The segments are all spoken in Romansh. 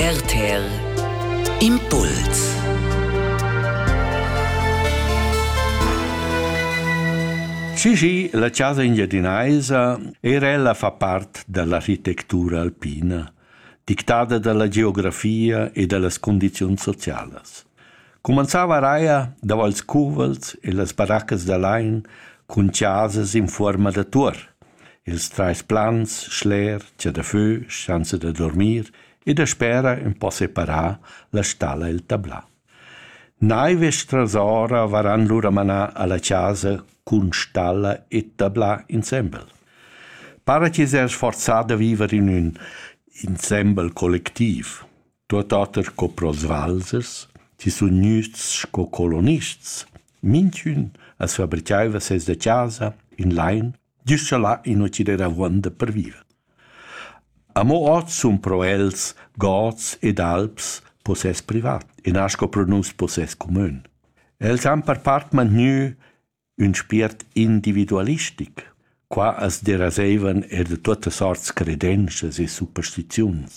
RTL Impuls Cigi, la casa engiadinaisa, era ella fa part dall'architectura alpina, dictada dalla geografia e dallas condizions socialas. Cumanzava eir davo ils cuvels e las baraccas da lain cun chasas in fuorma da tuor, ils trais plans, schler, chadafö, schanza da dormir e daspera ün po separà la stalla e'l tablà. Naiv e strasora varan lura manà a la chasa cun stalla e tablà insembel. Para chi s'ha sforzà da viver in ün insembel collectiv. Tuot oter co prosvalzers chi sun gnüts sco colonists. Minchün as fabrichaiva seis da chasa in lain güst scha là in uccider avuonda per viver. Amo hoz sun pro els gods ed alps possess privat e nascho pro nus possess cumün. Els han per part mantgnü Ün spiert individualistic. Qua as deraseivan eir da tuottas sorts credenschas e superstiziuns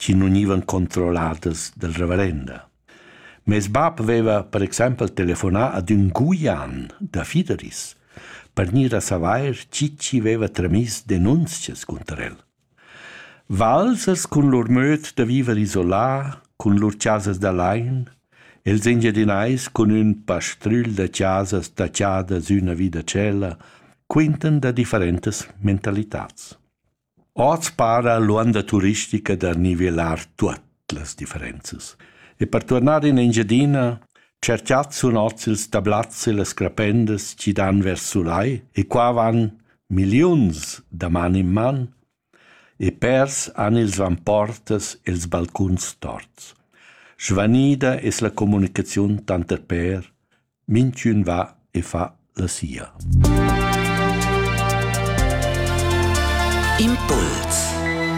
chi nu gnivan controlladas dal reverenda. Meis bap vaiva per exaimpel telefonà ad ün Guian da Fideris per gnir a savair chi chi vaiva tramiss denunzias cunter el. Valsas cun lur möd da viver isolà, cun lur chasas da lain, els Engiadinais cun ün pastrügl da chasas tachadas üna vi da tschella, quintan da differentas mentalitats. Hoz para l'uonda turistica da nivelar tuot. las differenzas. E per tornar in Engiadina cerchat sun ozils da blazze las crapendas chi dan vers sulai e qua van milliuns da man in man e pers han ils vamportas els balcuns torts. Svanida es la comunicaziun tanter per, minchün va e fa la sia. Impuls